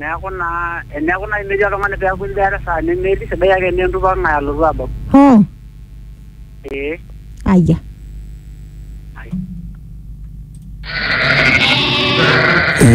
Neeku naa eneeku naaji metii oltung'ani peeku embaata esaa nemetii sidai ake enaa entupa ng'ae alotu abau. Hoo. Ee. Aya.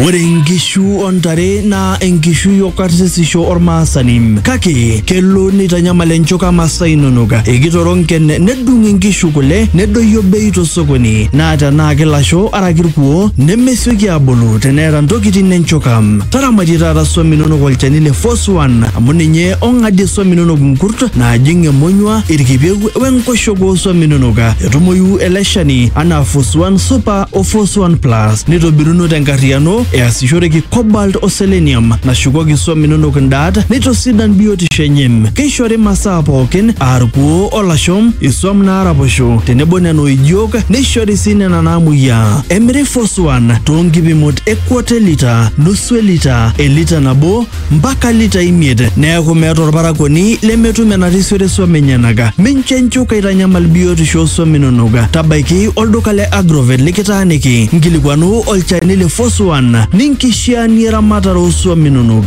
Ore inkishu o ntare naa enkishui o karsisisho olmaasani. Kake kelo neitanyamal enchuka masaa inonok. Ekitorronken nedung inkishu kule nedoyio bei to sokoni. Naa tenaa ki lasho araki irkuoo nemesioki aabulu teneeta ntokitin enchoka. Taramatie taata swam inonok olchani le Force One amu ninye ong'adie swam inonok nkurt naajing emonyua, irkipieu we nkoshoke oo swam inonok. Etumoyu ele shani anaa Force One Super o Force One Plus neitobiruno tenkarriyiano easishoreki cobalt o selenium nashukoki swam inonok ndaat neitosidan biotisho enye. Keishori masaa pookin aa irkuoo o lasho, iswam naaraposho tenebo nena oijio neishori sii nena naamuoyiaa. Emiri Foswan too nkipimot e kwata e lita, nusu e lita, elita nabo mpaka lita imiet neaku meeta olparakuoni lemetum enarisiore swam enyenak. Mincho nchuka eitanyamal biotisho oo swam inonok. Tabaiki olduka le Agrovet likitaaniki nkilikuanu olchani le Foswan ninkishiaanie eramatare oo swam inonok.